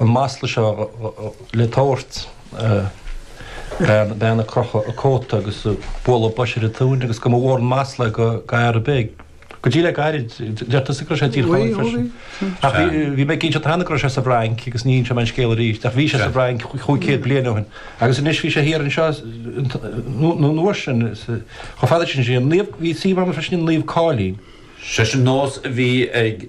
an masla seo le tabhairt bean ag crochadh a cóta agus ag bualadh bois ar a tóin agus go mba mhór an masla é go háirid go dtí le gairid deirtear go raibh sé i dTír Chonaill freisin ach bhí mé ag inseacht cheana go raibh sé sa bhFrainc agus ní inseoidh mé an scéal arís ach bhí sé sa bhFrainc chúig chéad bliain ó shin agus anois bhí sé thiar anseo an uair sin chomh fada sin sin naomh bhí sí mar freisin Naomh Cáilín sé sin nós a bhí ag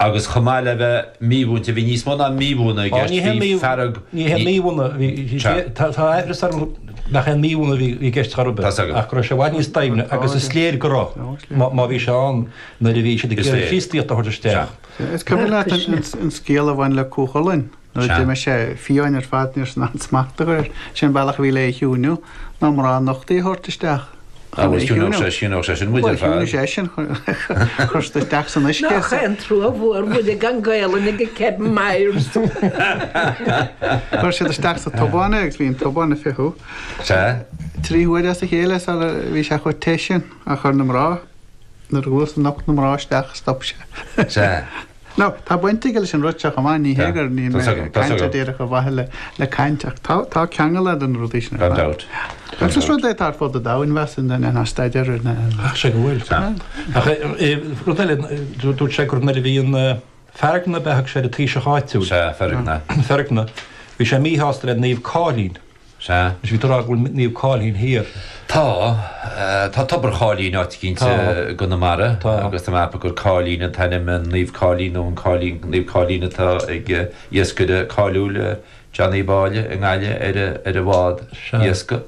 Agus chomh maith le bheith mímhúinte, bhí níos mó ná mímhúineadh i gceist, bhí fearg, ní haon mímhúineadh a bhí i gceist, tá mé ag rá nach aon mímhúineadh a bhí i gceist chor ar bith, ach go raibh sé i bhfad níos doimhne agus is léir go raibh, má bhí sé ann nuair a bhí siad ag iarraidh an Chríostaíocht a thabhairt isteach. Is cuimhin leat an scéal a bhain le Cú Chulainn? Nuair a d'imigh sé fiáin ar fad níorbh fhéidir aon smacht a chur air. Sé an bealach a bhí le é a chiúiniú ná mná nochta a thabhairt isteach chun é a chiúiniú. Bhuel, chiúnódh sé sin muid ar fad. Bhuel, chiúnódh sé sin chuir tú isteach san uisce. Nach é an trua mhór muid ag an Gaelainn ag Kevin Myers. Chuir siad isteach sa tobán é agus bhí an tobán ag fiuchadh. Sea. Trí huaire as a chéile mar bhí sé chomh te sin ach chuir na mná, nuair a nocht na mná isteach stop sé. Sea. Nó, tá baint aige leis an rud seo chomh maith, ní hé gur caint díreach ar mhaithe le caint, ach tá, tá ceangal leis na rudaí sin ar fad. Gan dabht. Agus is rud é atá ar fud an domhain, bheadh suim duine ná staidéar ina ainm. Ach sé go bhfuil. Tá. Ach rud eile, dúirt sé go raibh, bhí an Feargna, b'in é an taoiseach áitiúil. Sea, Feargna. Feargna. Bhí sé míshásta le Naomh Cáilín. Sea. Is bhí tú ag rá go bhfuil Naomh Cáilín thiar. Tá. Tá Tobar Cháilín áit éicint i gConamara agus tá mé ag ceapadh gur Cáilín an t-ainm an Naomh Cáilín nó an Cáilín, Naomh Cáilín atá ag iascaire cáiliúil Éamon Uí Bháille i nGaillimh ar ar a bhád iascaigh.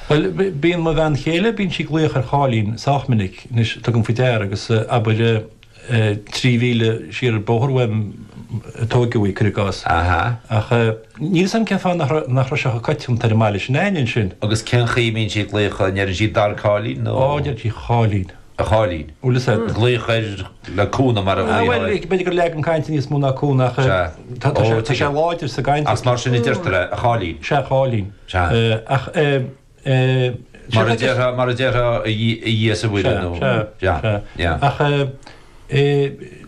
Bhuel, bíonn mo bhean chéile, bíonn sí ag glaoch ar Cháilín sách minic. Anois, tugaim faoi deara agus abair. trí mhíle soir an bóthar uaim a tógadh í, cuir i gcás. Ach níl 'fhios a'm cén fáth nach raibh, nach raibh sé chomh coitianta ar an mbaile s'againne ansin. Agus cén chaoi a mbíonn siad ag glaoch, ndeireann siad dar Cáilín nó. Ó, deireann siad a Cháilín. A cháilín. Bhuel, is é. Ag glaoch air le cúnamh mar a bhfuil. Ó bhuel, b'fhéidir gur leagan cainte níos mó ná cúnamh ach. Sea. Tá, tá sé, tá sé láidir sa gcaint. Ach mar sin a deirtear é, a cháilín. Sea, a cháilín. Sea. Ach eh. Mar a déarfá, mar a déarfá, a Dhia is a Mhuire nó. Sea, sea, sea. Sea. Ach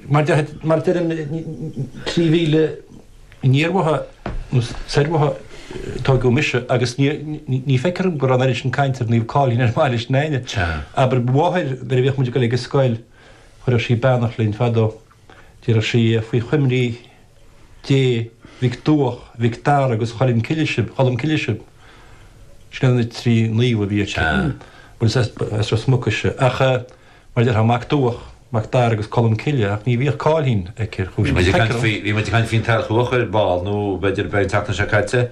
mar a deirim, trí mhíle aniar uaithi nó soir uaithi a tógadh mise agus ní feictear dom go raibh an oiread sin cainte ar Naomh Cáilín ar an mbaile s'againne. Sea. Abair, mo mháthair, nuair a bhíodh muid ag dul ag an scoil, chuireadh sí beannacht linn fadó. Déarfadh sí faoi choimirce Dé, Mhic Duach, Mhic Dara agus Choilm Cille sib, Cholm Cille sib, sin iad na trí naomh a bhí aici, bhuel is as Ros Muc ise, ach mar a déarfá Mac Duach, Mac Dara agus Colm Cille ach ní bhíodh Cáilín aici ar chúis. Bhí muid ag caint faoi an t-ábhar ar ball nó b'fhéidir b'in an tseachtain seo caite.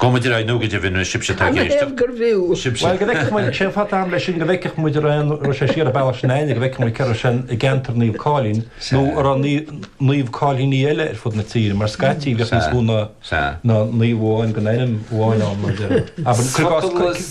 Go maidir aidh nó go deimhin bhfuil sibhse atá ag éisteacht. An é gur bhfiú? Sibhse. Bhuel, go bhfeicfeadh muid, cén fáth atá am leis sin, go bhfeicfeadh muid, a raibh an, raibh sé siar an bealach sin éinne, go bhfeicfeadh muid cé a raibh sé i gceantar Naomh Cáilín nó a raibh Naomh Cáilíní eile ar fud na tíre, mar scaití bhíodh níos mó ná naomh amháin den ainm amháin ann, mar a déarfá. Abair, cuir i gcás,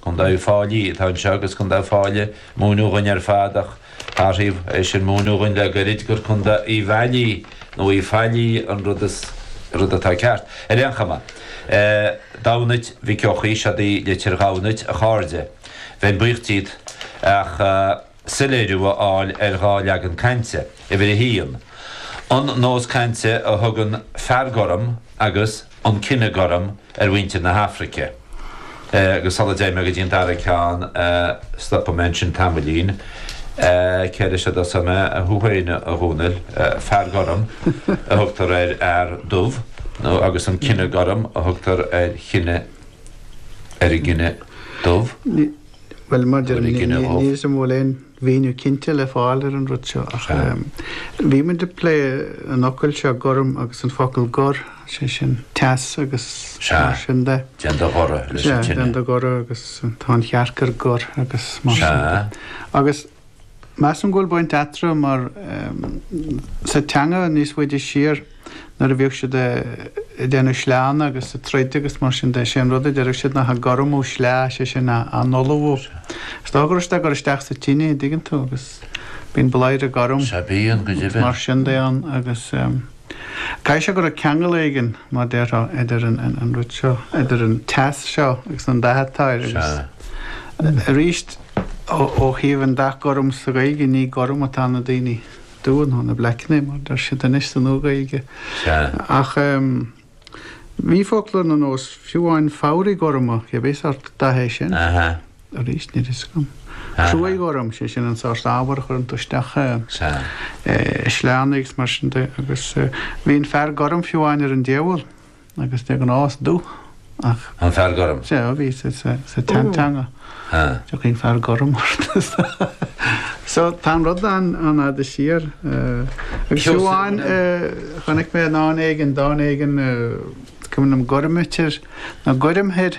Contae Uíbh Fhailí atá anseo agus Contae Uíbh Fháile a múineadh dhúinn ar fad ach thairis é sin múineadh dhúinn le goirid gur Contae Uíbh Fhailí nó Uí Fhailí an rud, is rud atá ceart. Ar aon chuma, Damhnait Mhic Eochaidh, siod í litir Dhamhnait, a chairde. Bheinn buíoch díot ach. soiléiriú a fháil ar dhá leagan cainte, uimhir 1, an nós cainte a thugann 'fear gorm' agus 'an cine gorm' ar mhuintir na hAfraice, agus sula dté mé go dtí an dara ceann, stopfaidh mé ansin tamaillín. Cé leis a dtosóidh mé? Thú féin, a Chonaill. 'Fear gorm' a thugtar ar fhear dubh, nó, agus 'an cine gorm' a thugtar ar chine, ar an gcine dubh. Bhuel, maidir le, níl a fhios agam an bhfuil aon mhíniú cinnte le fáil ar an rud seo ach bhí muid ag plé an fhocail seo gorm agus an focal gor, sé sin teas agus mar sin de. Sea, déan do ghoradh leis an tine. Sea, déan do ghoradh agus tá an chearc ar gor agus mar sin de. Sea. Agus. Measaim go bhfuil baint eatarthu mar, sa teanga, níos faide siar, nuair a bhíodh siad ag déanamh sleánna agus ag troid agus mar sin de, sé an rud a deireadh siad ná 'ag gormú sleá', sé sin, á n-ullmhú. Is dócha go raibh siad á gcur isteach sa tine, a' dtuigeann tú, agus bíonn bladhaire gorm, agus mar sin de ann agus. Caithfidh sé go raibh ceangal éigin, mar déarfá, idir an rud seo, idir an teas seo agus an dath atá air agus, arís, ó thaobh an dath gorm sa Ghaeilge, ní gorm atá na daoine dubha ná na bleaiceanna, mar deir siad anois sa Nua-Ghaeilge. Ach bhí focla ar nós fiú amháin fabhraí gorma, cibé sórt datha é sin. arís, níl a fhios agam. Cruach ghorm, sé sin an sórt ábhair a chuireann tú isteach i sleánna agus mar sin de agus bhí an fear gorm fiú amháin ar an diabhal agus de ghnáth is dubh atá. An fear gorm? Sea, bhí sé sa teanga. Tiocfaidh an fear gorm ort. So tá an rud ann i bhfad siar agus fiú amháin chonaic mé i ndán éigin, dán éigin, is cuimhin liom gormaitir nó goirmthir.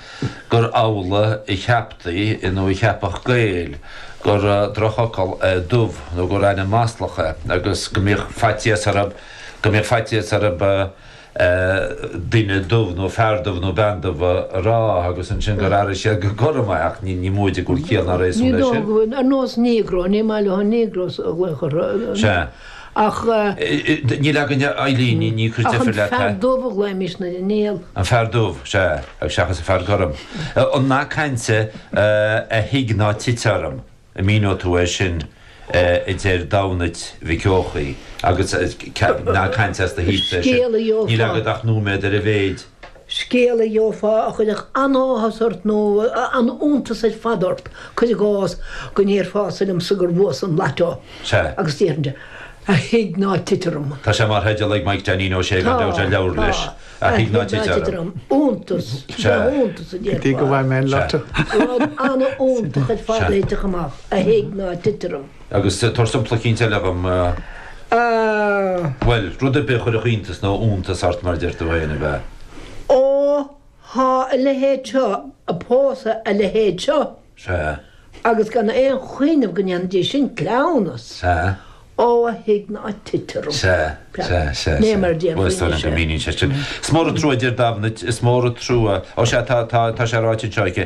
gur amhlaidh a cheaptaí nó a cheapfadh Gaeil gur drochfhocal é 'dubh' nó gur ainm maslach é agus go mbíodh faitíos orthu duine 'dubh' nó fear 'dubh' nó bean 'dubh' a rá agus ansin gur airigh siad gur 'gorm' ach ní móide go bhfuil ciall ná réasún leis sin. Sea. Ach. Níl againn, a Eileen, ní ag cur deifir leat, hea? Ach an fear dubh a ghlaoimís nuair a níl. An fear dubh, sea, agus seachas an fear gorm. An nath cainte A thigh ná tit orm, an míneoidh tú é sin? a deir Damhnait Mhic Eochaidh agus nath cainte as do thír féin é sin. Níl agat ach nóiméad ar a mhéid. Scéal a gheofá a chuirfeadh an-áthas ort nó an-iontas ar fad ort, cuir i gcás, go ndéarfása liomsa gur bhuas an Lotto Sea. agus déarfainnse, 'A thigh ná tit orm! Tá sé mar theideal ag Maidhc Dainín Ó Sé, gan dabht, ar leabhar leis, A Thigh Ná Tit Orm. Iontas, Sea. iontas, a Go dtí go déarfá. bhfaighidh mé an Sea. Lotto. Rud an-iontach ar fad a thitfeadh amach, a thigh ná tit orm. Agus tá sampla eicínt eile agam, bhuel, rud ar bith a chuirfeadh iontas nó iontas ort, mar a deir tú fhéin, ab ea? Ó, tá a leithéid seo a' pósadh a leithéid seo. Sea. Agus gan aon chuimhneamh go ndéanfaidís sin cleamhnas. Sea. Ó, a thigh ná tit orm. Sea, sea, sea, sea. Ní mar a déarfaí anois é. Bhuel, is dóigh liom go míníonn sé sin. Is mór an trua, a deir Damhnait, is mór an trua. Ó sea, tá, tá, tá sé ráite anseo aici.